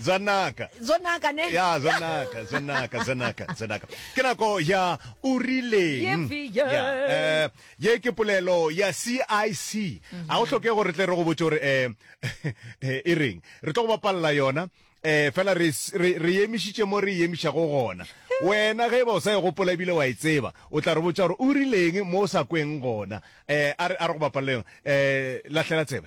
Zanaka. Zonaka, ne? Ya, Zonaka, Zonaka, Zonaka, Zonaka. Ke nako ya o rileng. Ye bjang? Ya, eh, ye ke polelo ya CIC. A o hloke gore re tle re go botse gore eh, eh, e reng. Re tlo go bapalela yona. Eh, fela re, s- re, re emišitše mo re emišago gona. Wena ge e ba o sa e gopola ebile wa e tseba, o tla re botsa gore o rileng mo o sa kweng gona. Eh, a re, a re go bapalela yona. Eh, lahlela tsebe.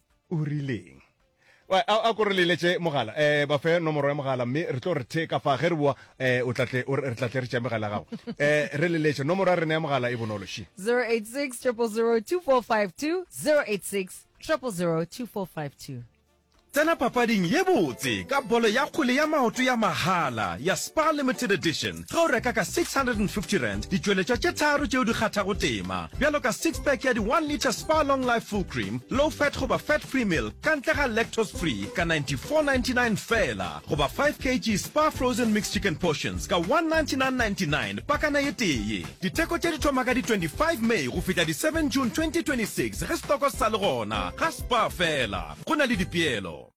o rileng a ko re leletše mogala um ba fe nomoro ya mogala mme re tlo re the ka fa ge re boa um o tlatle re tlatle re tšea megala ya gago um re leletše nomoro ya rena ya mogala e bonolo she 086 000 2452 086 000 2452 Tsena papading ye botse ka bolo ya kgwele ya maoto ya mahala ya Spar Limited Edition. Ge o reka ka R650, ditšweletšwa tše tharo tšeo di kgathago tema, bjalo ka six-pack ya di-one litre Spar Long Life Full Cream, low-fat goba fat-free milk ka ntle ga lactose-free ka R94.99 feela, goba five kg Spar Frozen Mixed Chicken Portions ka R199.99 pakana e tee. Ditheko tše di thoma ka di 25 May go fihla di seven June 2026 ge setoko se sa le gona. Ga Spar feela, go na le dipeelo.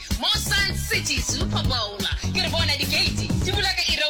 Mo Sun City Super Bowl ke re bona dikeiti di bula ka iri ya